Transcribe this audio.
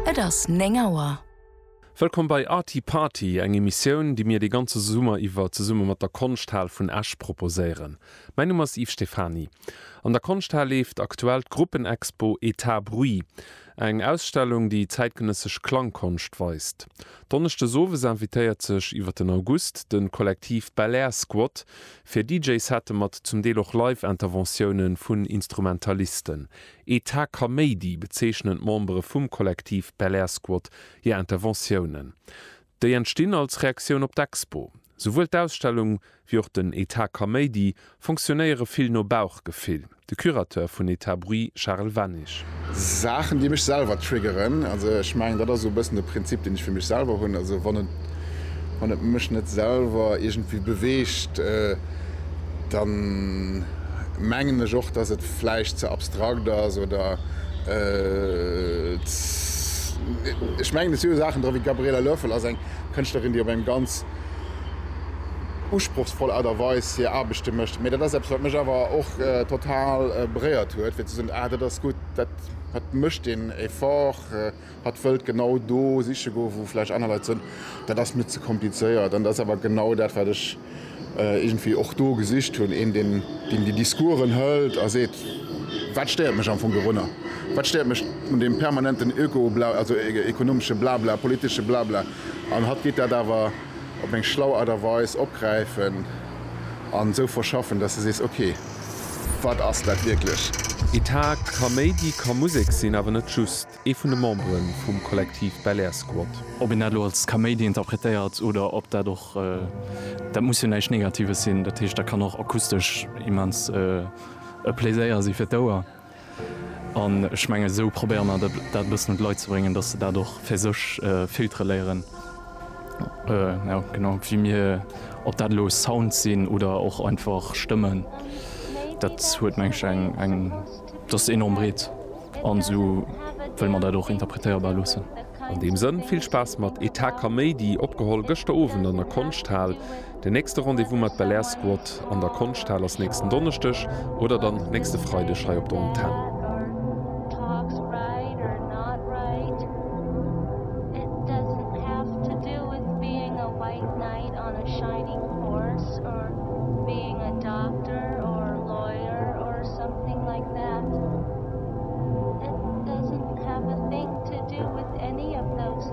Et ass néng Auer. Wëllkomm bei Arty Party, eng Emissioun, déi mir de ganze Summer iwwer zesumme mat der Konschthal vun Esch proposéieren. Mäin Numm ass Yves Stephany. An der Konschthal leeft aktuell d'Gruppenexpo Etat Bruit, eng Ausstellung, déi zäitgenëssesch Klangkonscht weist. Donneschdes owes invitéiert sech iwwer den August de Kollektiv Belair Squat fir DJ-Sette mat zum Deel och Live-Interventiounen vun Instrumentalisten. Etat Kaméidi bezeechnen d'Membere vum Kollektiv Belair Squad hir Interventiounen. Déi entstinn als Reaktioun op d'Expo. Souwuel d'Ausstellung wéi och den Etat Kaméidi fonctionnéiere vill no Bauchgefill, de Curateur vun Etat Bruit Charel Wennig. Saachen déi mech selwer triggeren, also ech mengen dat ass esou e bëssen de Prinzip deen ech fir mech selwer hunn, also wann et. wann et mech net selwer iergendwéi beweegt, da mengen ech och, datt et vläicht ze abstrakt ass oder ech mengen, et si jo Saachen dra wéi d'Gabriela Loeffel ass eng Kënschtlerin, déi op eng ganz usprochsvoll Aart a Weis hir Aarbechte mécht. Mee dat ass eppes, wat mech awer och total beréiert huet, fir ze soen, ah dat ass gutt, dat mécht een Effort. Hatt wëllt genau do siche goen, wou vläicht aner Leit soen, dat ass mir ze komplizéiert. An dat ass awer genau dat, wat ech iergendwéi och do gesicht hunn, een, deen déi Discoursen hëlt a seet, wat stéiert mech am Fong dorunner, wat stéiert mech un deem permanenten Öko-Bla, also ekonomesche Blabla, politesche Blabla. An hatt geet dat awer op eng schlau Aart a Weis opgräifen an esou verschaffen, dass de sees, ok. Wat ass dat wierklech? Etat, Kaméidi ka Musek sinn, awer net just. Ee vun de Membere vum Kollektiv Belair Squad. Ob een dat elo als Kaméidi interpretéiert oder ob dat och, dat muss jo näischt Negatives sinn, dat heescht dat kann och akustesch immens e Pléséier si fir d'Ouer. An ech mengen, esou probéiere mer dat e bëssen un d'Leit ze bréngen, datt se dat och fir sech filtere léieren, genau wéi mir. Ob dat elo Sounds sinn oder och einfach Stëmmen, dat huet, meng ech, eng, dat ass enorm breet an esou wëlle mer dat och interpretéierbar loossen. An deem Sënn, vill Spaass mat Etaka Méi, déi opgeholl gëschter Owend an der Konschthal. Den nächste Rendez-vous mat Belair Squad an der Konschthal ass nächsten Donneschdeg oder dann nächste Freideg hei op der Antenn.